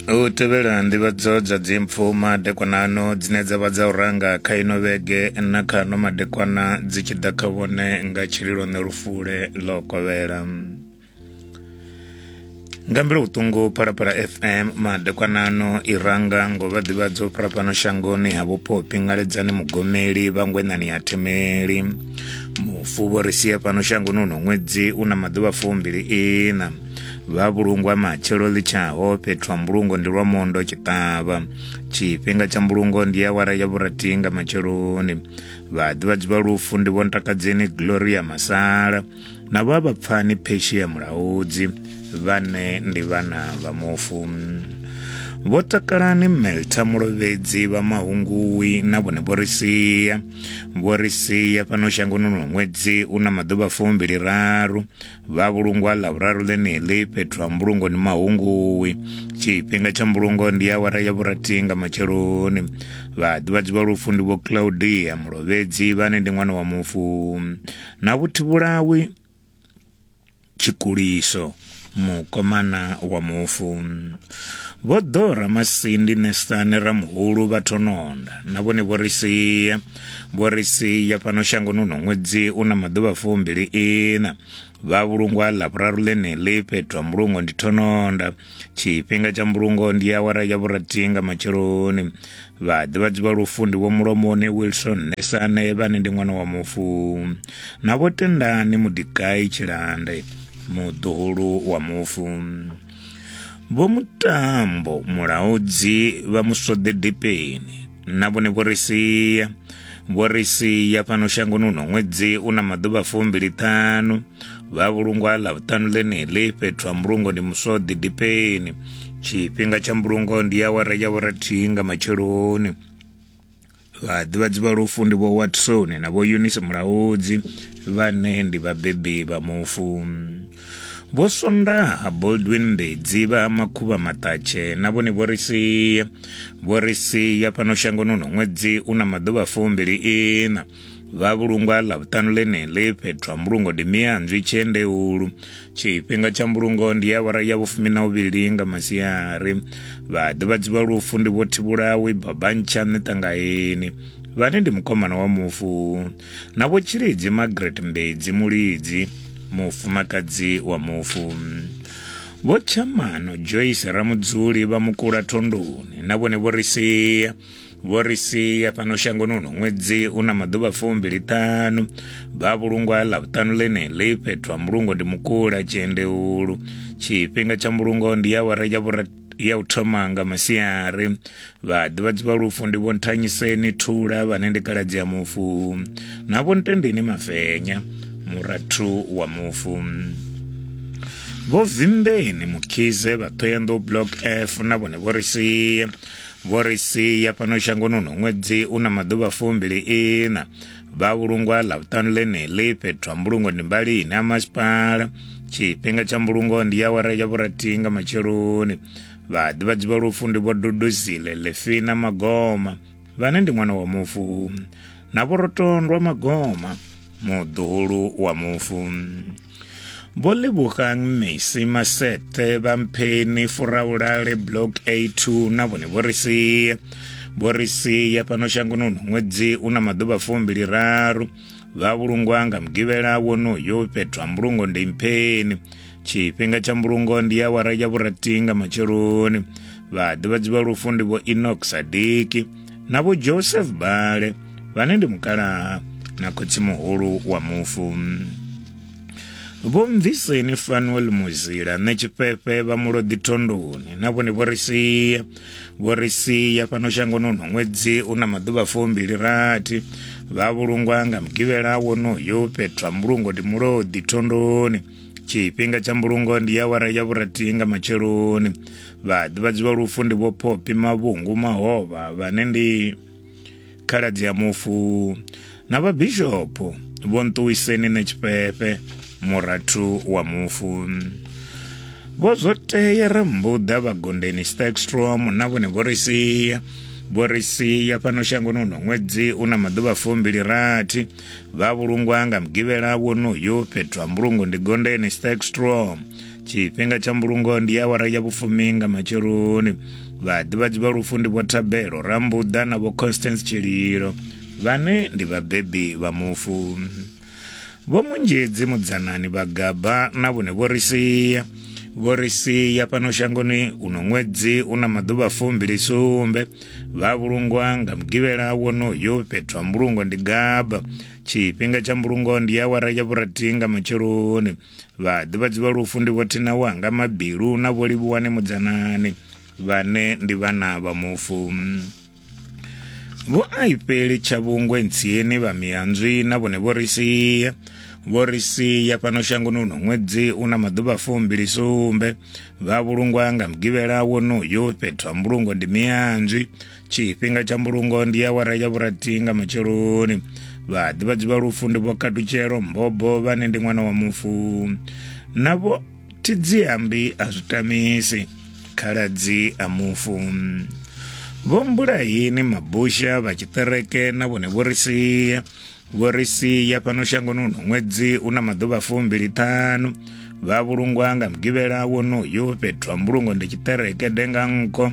u tevhela nḓivhadzo dza dzimpfu madekwanano dzine dza vha dza u ranga kha ino vhege na kha no madekwana dzi tshi ḓa kha vhone nga tshililo ne lufule ḽo kovhela nga mbilo vhuṱungu phalaphala fm madekwanano i ranga ngo vha ḓivhadzo phalapano shangoni ha vhupo pingaledzani mugomeli vhangwenani ha themeli mufu vho ri sie fhano shangoni uno ṅwedzi u na maḓuvha fumbili ina vha vhulungwa matshelo ḽi tshaho fhethu ha mbulungo ndi lwa mondo tshiṱavha tshifhinga tsha mbulungo ndi awara ya vhurathi nga matsheloni vhaḓivhadzi vha lufu ndi vhontakadzeni gloria masala na vha vhapfani pheshia mulaudzi vhane ndi vhana vha mufu vho takalani melta mulovhedzi vha mahungui na vhone vho ri sia vho ri sia fhano shangoni lwa ṅwedzi u na maḓuvha fumbili raru vha vhulungwa ḽa vhuraru ḽeneḽi fhethu ha mbulungo ni mahunguwi tshifhinga tsha mbulungo ndi awara ya vhurathi nga matsheloni vhaḓivhadzi vha lufu ndi vho claudia mulovhedzi vhane ndi ṅwana wa mufu na vhuthivhulawi tshikuliso mukomana wa mufu vho ḓora masindi nesani ramuhulu vha thononda na vhone vho ri sia vhorisi ya fhano shangoni uno ṅwedzi u na maḓuvha fumbili ina vha vhulungwa ḽa vhuraru ḽeneḽi fhethu ha mbulungo ndi thononda tshifhinga tsha mbulungo ndi awara ya vhurathi nga matsheloni vhaḓivhadzi vha lufu ndi vho mulomoni wilson nesane vhane ndi ṅwana wa mufu na vho tendani mudikai tshilande muḓuhulu wa mufu vho mutambo mulaudzi vha musode dipeni na vhone vho ri sia vho ri sia fhano shangoni uno ṅwedzi u na maḓuvha fumbili ṱhanu vha vhulungwa ḽa vhuṱanu ḽeneḽi fhethu ha mbulungo ndi muswoḓi dipeni tshifhinga tsha mbulungo ndi awara ya vhorathihi nga matsheloni vhaḓivhadzi vha lufu ndi vho watson na vho eunice mulaudzi vhane ndi vhabebi vha mufu Vho Swondaha Baldwin Mbedzi vha Makhuvha Maṱatshe na vhone vho ri sia vho ri sia fhano shangoni uno ṅwedzi u na maḓuvha fumbili ina vha vhulungwa ḽa vhuṱanu ḽeneḽi fhethu ha mbulungo ndi mianzwi tshiendeulu tshifhinga tsha mbulungo ndi ya awara ya vhufumi na uvhili nga masiari vha ḓivhadziwa lufu ndi vho thivhulawi babantsha nṋe ṱangaeni vhane ndi mukomana wa mufu na Vho Tshilidzi Margaret Mbedzi Mulidzi, mufumakadzi wa mufu. Vho Tshamano Joyce Ramudzuli vha Mukula Thondoni na vhone vho ri sia vho ri sia fhano shangoni uno ṅwedzi u na maḓuvha fumbili ṱanu vha vhulungwa ḽa vhuṱanu ḽeneḽi fhethu ha mbulungo ndi mukula tshiendeulu tshifhinga tsha mbulungo ndi awara ya vhura ya u thoma nga masiari vhaḓivhadzi vha lufu ndi vho nthanyiseni thula vhane ndi kaladzi ya mufu na vho ntendeni mafenya murathu wa mufu vho vimbeni mukhize vha thoyanḓou block f na vhone vho ri sia vho ri sia fhano shangoni uno ṅwedzi u na maḓuvha fumbili ina vha vhulungwa ḽavhuṱanu ḽeneḽi fhethu ha mbulungo ndi mbali ine ya masipala tshifhinga tsha mbulungo ndi ya wara ya vhurathi nga matsheloni vhaḓivhadzi vha lufu ndi vho duduzile lefina magoma vhane ndi ṅwana wa mufu na vhorotondwa magoma muḓuhulu wa mufu Vho Lebogang Mesi Masete vha Mpheni Furaulale Block A2 na vhone vho ri sie vho ri sia fhano shangoni uno ṅwedzi u na maḓuvha fumbili raru vha vhulungwa nga mugivhela wonoyo fhethu ha mbulungo ndi mpheni tshifhinga tsha mbulungo ndi awara ya vhurathi nga matsheloni vhaḓivhadzi vha lufu ndi vho enox sadiki na vho joseph bale vhane ndi mukalaha na khotsi muhulu wa mufu vho mviseni fanuel muzila nṋe tshifhefe vha muloḓi thondoni na vhone vho ri sia vho ri sia fhano shangoni uno ṅwedzi u na maḓuvha fumbili rathi vha vhulungwa nga mugivhela wonoyo fhethu ha mbulungo ndi muloḓi thondoni tshifhinga tsha mbulungo ndi ya wara ya vhurathi nga matsheloni vhaḓivhadzi vha lufu ndi vho phophi mavhungu mahovha vhane ndi khaladzi ya mufu na vhabishopo vho nṱuwiseni ne tshifhefhe murathu wa mufu vho zwo tea ri mbuḓa vhagondeni stakstrom na vhone vho ri sia vho ri sia fhano shangoni uno ṅwedzi u na maḓuvha fumbili rathi vha vhulungwa nga mugivhela wonoyo fhethu ha mbulungo ndi gondeni stakstrom tshifhinga tsha mbulungo ndi awara ya vhufumi nga matsheloni vhaḓivhadzi vha lufu ndi vho thabelo rambuḓa na vho constance tshililo vhane ndi vhabebi vha mufu vho munzhedzi mudzanani vhagaba na vhone vho ri sia vho ri sia fhano shangoni uno ṅwedzi u na maḓuvha fumbili sumbe vha vhulungwa nga mugivhela wonoyo fhethu ha mbulungo ndi gaba tshifhinga tsha mbulungo ndi awara ya vhurathi nga matsheloni Vhaḓivhadzi vha lufu ndi vho Thina Wanga Mabilu na vho Livhuwani Mudzanani vhane ndi vhana vha mufu. Vho Aipeli Tshavhungwe Ntsieni vha Miyanzwi na vhone vho ri sia vho ri sia fhano shangoni uno ṅwedzi una maḓuvha fumbili sumbe vha vhulungwa nga mugivhela wonoyo fhethu ha mbulungo ndi miyanzwi tshifhinga tsha mbulungo ndi awara ya vhurathi nga matsheloni vhaḓivhadzi vha lufu ndi vho katutshelo mbobo vhane ndi ṅwana wa mufu na vho thidziambi a zwi tamisi khaladzi a mufu vho mbulahini mabusha vha tshiṱereke na vhone vho ri sia Vho ri sia fhano shangoni uno ṅwedzi u na maḓuvha fumbili ṱhanu vha vhulungwa nga mugivhela wonoyo fhethu ha mbulungo ndi tshiṱereke denga nko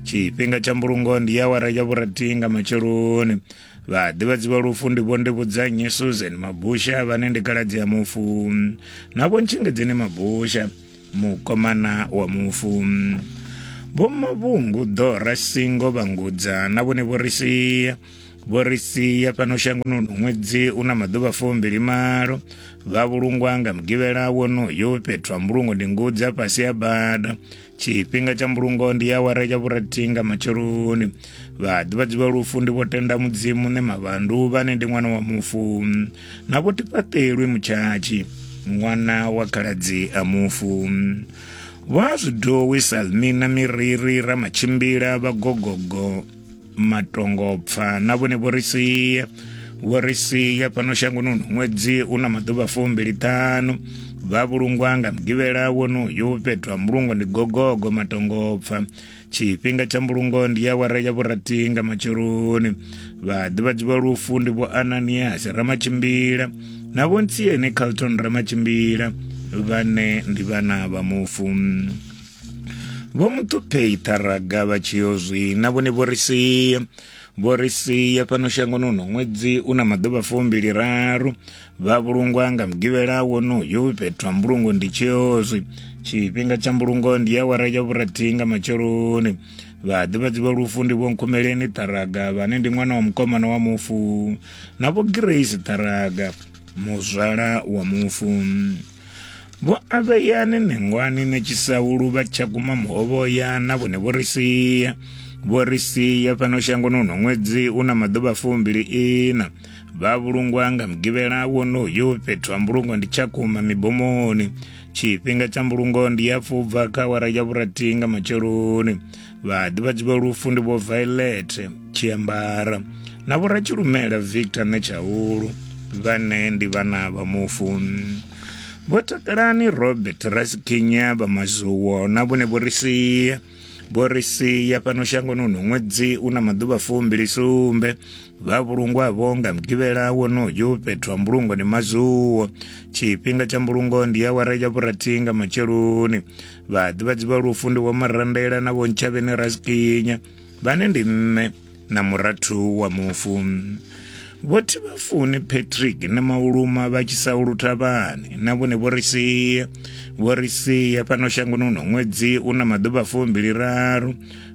tshifhinga tsha mbulungo ndi ya wara ya vhurathi nga matsheloni vha ḓivhadzi vha lufu ndi vhonde vhudzanyi susan mabusha vhane ndi kaladzi ya mufu na vhontshingedzeni mabusha mukomana wa mufu vhomavhungu ḓora singo vhangudza na vhone vho ri sia vho ri sia fhano shangoni uno ṅwedzi u na maḓuvha fumbili malo vha vhulungwa nga mugivhela wonoyo fhethu ha mbulungo ndi ngudzi a fhasi ya bada tshifhinga tsha mbulungo ndi ya wara ya vhurathi nga matsheloni vhaḓivhadzi vha lufu ndi vho tenda mudzimu ne mavhandu vhane ndi ṅwana wa mufu na vho tifhaṱelwi mutshatshi ṅwana wa khaladzi a mufu vha zwidowi salmina miriri ramatshimbila vhagogogo matongopfa na vhone vho ri sie vho ri sie fhano shangoni uno ṅwedzi u na maḓuvha fumbiliṱhanu vha vhulungwa nga mugivhela wonoyo fhethu ha mbulungo ndi gogogo matongopfa tshifhinga tsha mbulungo ndi awara ya vhurathi nga matsheloni vhaḓivhadzi vha lufu ndi vho ananiasi ramatshimbila na vho ntsiene carlton ramatshimbila vhane ndi vhana vha mufu vho muṱuphei ṱharaga vha tshi yo zwi na vhone vho ri sia vho ri sia fhano shangoni uno ṅwedzi u na maḓuvha fumbili raru vha vhulungwa nga mugivhela wonoyo fhethu ha mbulungo ndi tshiozwi tshifhinga tsha mbulungo ndi ya wara ya vhurathi nga matsheloni vhaḓivhadzi vha lufu ndi vho nkhumeleni ṱharaga vhane ndi ṅwana wa mukomana wa mufu na vho grace ṱharaga muzwala wa mufu Vho Aveyane Nengwani na Tshisaulu vha tsha guma muhovhoya na vhone vho ri sia vho ri sia fhano shangoni uno ṅwedzi u na maḓuvha fumbili ina vha vhulungwa nga mugivhela wonoyo fhethu ha mbulungo ndi tshakhuma mibomoni tshifhinga tsha mbulungo ndi ya fubva kha awara ya vhurathi nga matsheloni vhaḓivhadzi vha lufu ndi vho violet tshiambara na vhoratshilumela victor netshaulu vhane ndi vhana vha mufu vho takalani robert rasikinya vha mazuwo na vhone vho ri sia vho ri sia fhano shangoni uno ṅwedzi u na maḓuvha fumbili sumbe vha vhulungwa vho nga mugivhela wonoyo fhethu ha mbulungo ndi mazuwo tshifhinga tsha mbulungo ndi awara ya vhurathi nga matsheloni vhaḓivhadzi vha lufu ndi vho marandela na vho ntshavheni rasikinya vhane ndi nṋe na murathu wa mufu vho thivhafuni patrick na mauluma vha tshi sa uluthavhani na vhone vho ri sia vho ri sia fhano shangoni uno ṅwedzi u na maḓuvha fumbili raru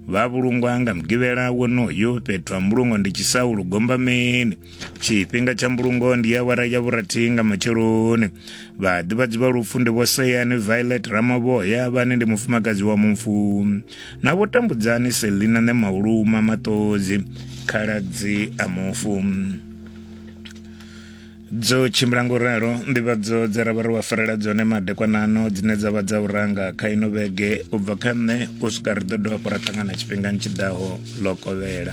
vha vhulungwa nga mugivhela wonoyo fhethu ha mbulungo ndi tshisaulu gombameni tshifhinga tsha mbulungo ndi awara ya vhurathi nga matsheloni vhaḓivhadzi vha lufu ndi vho seyani violet ramavhoya vhane ndi mufumakadzi wa mufu na vho tambudzani selina ne mauluma maṱodzi khaladzi a mufu dzo tshimbila ngo ralo nḓivhadzo dza ra vha ri wa farela dzone madekwanano dzine dza vha dza u ranga kha ino vhege u bva kha nṋe u swika ri ḓo dovha fho ra ṱangana tshifhingani tshi ḓaho ḽo kovhela